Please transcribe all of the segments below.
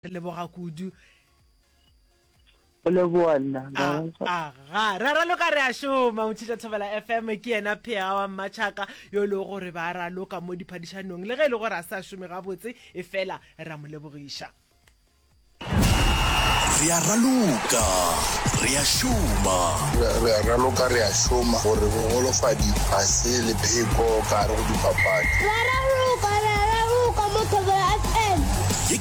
Re leboga kudu. O leboa nna. Aga, ra raloka re a šoma, o tshitša Thobela FM ke yena phega wa mmatšhaka yo le gore ba raloka mo diphadišanong le ge e le gore a sa šome gabotse e fela ra mo lebogiša. Re a raloka re a šoma. Re a raloka re a šoma gore bogolofadi ga se lepheko ka gare go dipapadi. Re a raloka re a raloka mo Thobela FM.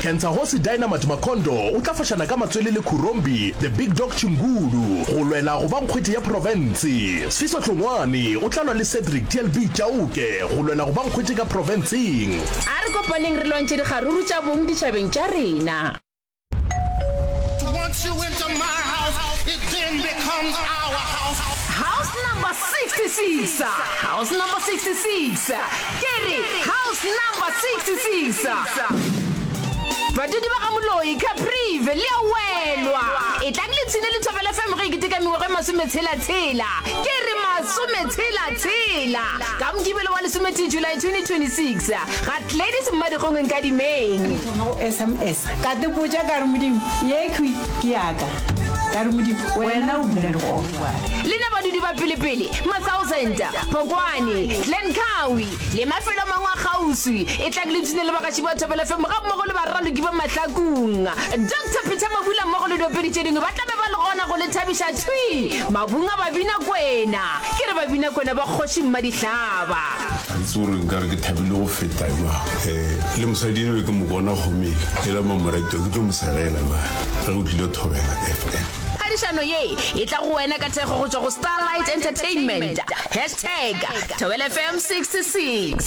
Kentsagosi Dynamite Makhondo o tla fošana ka matswele le Khurombi The Big Dog Chingulu go lwela go ba nkgwethi ya profense. Sifiso Hlongwane o tla lwa le Cedric TLB Chauke go lwela go ba nkgwethi ka profenseng. A re kopaneng re lwantšhe dikgaruru tša bong ditšhabeng tša rena. House Number 66 House Number 66 Ke re, House Number 66. Badudi ba ga Moloi, Caprive, le a welwa. Etlang le tshine Lethobela FM ge e keteka mengwaga e masometshela-tshela. Ke re, masometshela-tshela! Ka Mokibelo wa lesometee July 2026, ga Gladys Mmadikgong Nkadimeng. Ke thoma go sms ka te botša ka re Modimo ye khwi ke yaka ka re Modimo wena o bula legogo wa. Lena badudi ba pelepele, masaosenta, Phokwane, Glen Cowie le mafelo a mangwe a kgauswi e tla ke le tune le bagatši ba Thobela FM ga mmogo le baraloki ba Mahlakung. Doctor Peter Mabula mmogo le diopedi tše dingwe ba tla be ba le gona go le thabiša thwi mabung a Babinakwena. Ke re Babinakwena ba Kgoši Mmadihlaba. Ga ke tsebe gore nka re ke thabile go feta jwang. Um le mosadi enwa ke mo bona kgomele e la mamoretwa ke tlo mo segela ba ge o tlile Thobela FM. Phadišano ye e tla go wena ka thekgo go tšwa go Starlight Entertainment. Hashtag Thobela FM 66.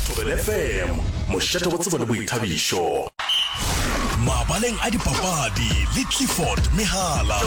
Thobela FM, mošate wa tsebo le boithabišo. Mabaleng a dipapadi le Clifford Mehala.